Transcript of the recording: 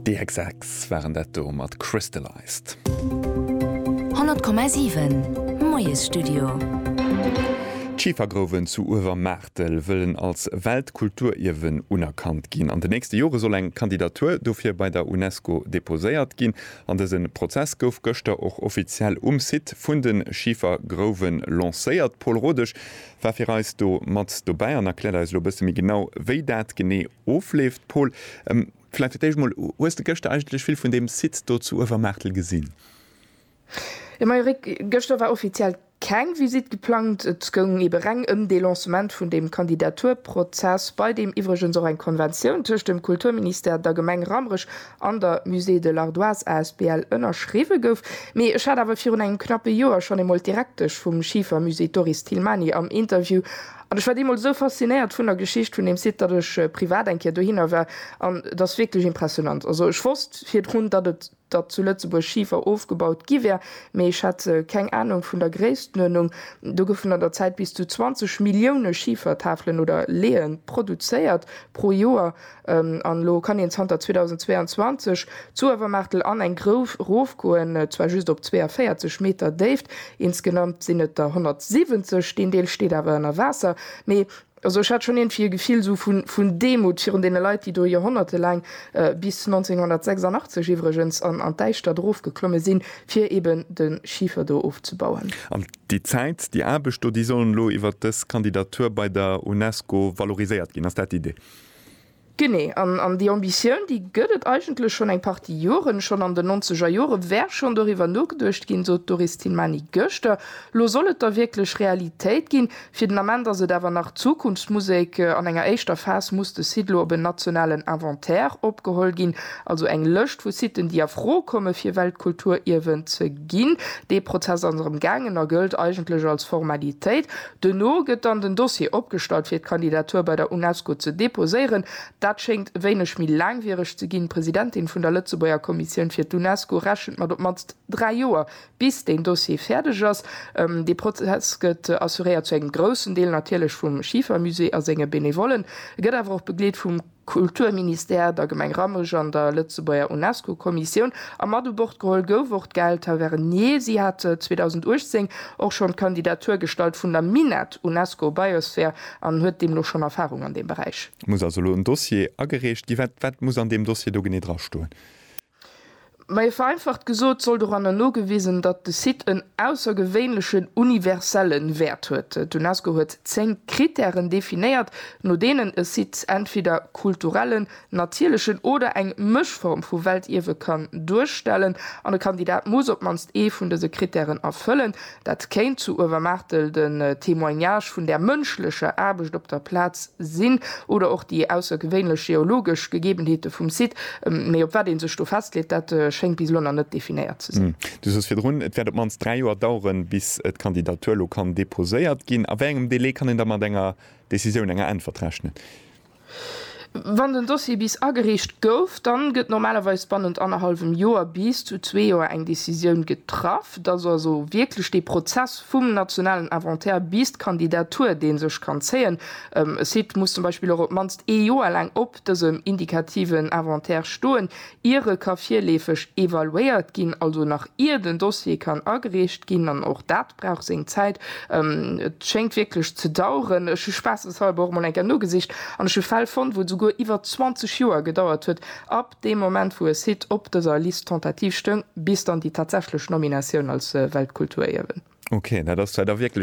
Déi Hex Hex waren dat do mat Crystalized. 100,7 Moiesstudio. D'Schifergrouwen zu Uewermaartel wëllen als Weltkulturierwen unerkannt ginn. An de nächste Jore soll eng Kandidatur dofir bei der UNESCO deposéiert ginn. An dëse Prozess gouf gëschter och offiziell um Site vun de Schifergrouwe lancéiert. Paul Rodesch, war fir eis do mat dobäi an erkläert eis elo e bësse méi genau, wéi dat genee ofleeft. Paul, vläicht fir d'éischt emol, Hues de gëschter eigentlech vill vun deem Site do zu Uewermaartel gesinn? Jo, majo Rick, gëschter war offiziell keng Visitt geplangt. Et goung ebe reng ëm dee Lancement vun deem Kandidaturprozess, bei deem iwwregens och eng Konventioun tëscht dem Kulturministère, der Gemeng Rammerech an der Musée de l'Ardoise asbl ënnerschriwwe gouf, mee ech hat awer virun engem knappe Joer schonn eemol d'Direktesch vum Schifermusée, d'Doris Thilmany, am Interview an ech war deemools esou faszinéiert vun der Geschicht vun deem Site, datt ech privat eng Kéier dohinner war an et ass wierklech impressionant. Also ech wosst virdrun, datt et datt zu Lëtzebuerg Schifer ofgebaut gi wär, mee ech hat keng Anung vun der Gréisstenuerdnung. Do goufen an der Zäit bis zu 20 Millioune Schifertafelen oder Leeën produzéiert pro Joer. An elo kann een zanter 2022 d'Suawermaartel an eng Grouf erofgoen, zwar just op 42 Meter Déift, insgenamt sinn et der 170. Deen Deel steet awer ënner Waasser. Mee also ech hat schonn iergendwéi e Gefill esou vun Demut virun deene Leit, déi do joerhonnertelaang, bis 1986 iwwregens, an d'Däischtert erofgeklomme sinn, fir eben de Schifer do ofzebauen. An déi Zäit, déi Aarbecht do, déi sollen elo iwwert dës Kandidatur bei der UNESCO valoriséiert ginn. Ass dat d'Idee? Genee, an an déi Ambitioun, déi gëtt et eigentlech schonn eng Partie Joren. Schonn an den Nonzegerjore wär schonn doriwwer nogeduecht ginn, sot d'Doris Tilmany gëschter. Lo soll et da wierklech Realitéit ginn. Fir den Ament ass et awer nach Zukunftsmusek. An enger éischter Phas muss de Site lo op en nationalen Inventaire opgeholl ginn, also eng Lëscht vu Siten, déi a Fro komme fir Weltkulturierwen ze ginn. Dee Prozess ass erëm gaangen a gëllt eigentlech als Formalitéit. Duerno gëtt dann den Dossier opgestallt fir d'Kandidatur bei der UNESCO ze deposéieren. Dat schéngt wéineg méi laangwiereg ze ginn. D'Presidentin vun der Lëtzebuerger Kommissioun fir d'UNESCO rechent mat op d'mannst dräi Joer, bis deen Dossier fäerdeg ass. Dee Prozess gëtt assuréiert, zu engem groussen Deel natierlech vum Schifermusée a senge Benevollen, gëtt awer och begleet vum. Kulturministère, der Gemeng Rammerech an der Lëtzebuerger UNESCO-Kommissioun. A mat u Bord geholl gouf och d'Gaëlle Tavernier. Si hat 2018 och schonn d'Kandidatur gestallt vun der Minett UNESCO Biosphere an huet deemno schonn Erfarung an deem Beräich. Et muss also elo en Dossier agereecht gi. Wat muss an deem Dossier do genee drastoen? Mei vereinfacht gesot soll doranner nogewisen, datt de Site en aussergewéinlechen universellen Wäert huet. D'Unesco huet zéng Kritären definéiert, no deenen e Site entweder kulturellen, natierlechen oder eng Mëschform vu Weltierwe kann duerstellen. An e Kandidat muss op d'mannst ee vun dëse Kritären erfëllen, Dat kéint zu Uewermaartel den Témoignage vun der mënschlecher Aarbecht op der Plaz sinn oder och déi aussergewéinlech geologesch Gegebenheete vum Site. Mee op wat ee sech do festleet, dat schéngt bis elo nach net definéiert ze sinn. Du soos virdrun, et wäert op d'mannst dräi Joer daueren, bis d'Kandidatur elo kann deposéiert ginn. A wéi engem Delai kann een da mat enger Decisioun, enger Äntwert rechnen? Wann den Dossier bis agereecht gouf, dann gëtt normalerweis bannent annerhallwem Joer bis zu zwee Joer eng Decisioun getraff, dass also wierklech dee Prozess vum nationalen Inventaire bis d'Kandidatur, dee sech kann zéien, e Site muss zum Beispill och op d'mannst ee Joer laang op dësem indikativen Inventaire stoen, ier e ka virleefeg evaluéiert ginn, also nach ier den Dossier kann agereecht ginn. An och dat brauch seng Zäit. Et schéngt wierklech ze daueren. Ech hu spaasseshalber och emol eng Kéier nogesicht an ech hu Fäll fonnt, wou et souguer iwwer 20 Joer gedauert huet ab deem Moment, wou e Site op dëser Liste tentative stoung, bis dann déi tatsächlech Nominatioun als Weltkulturierwen. Ok, dat ass da wierklech.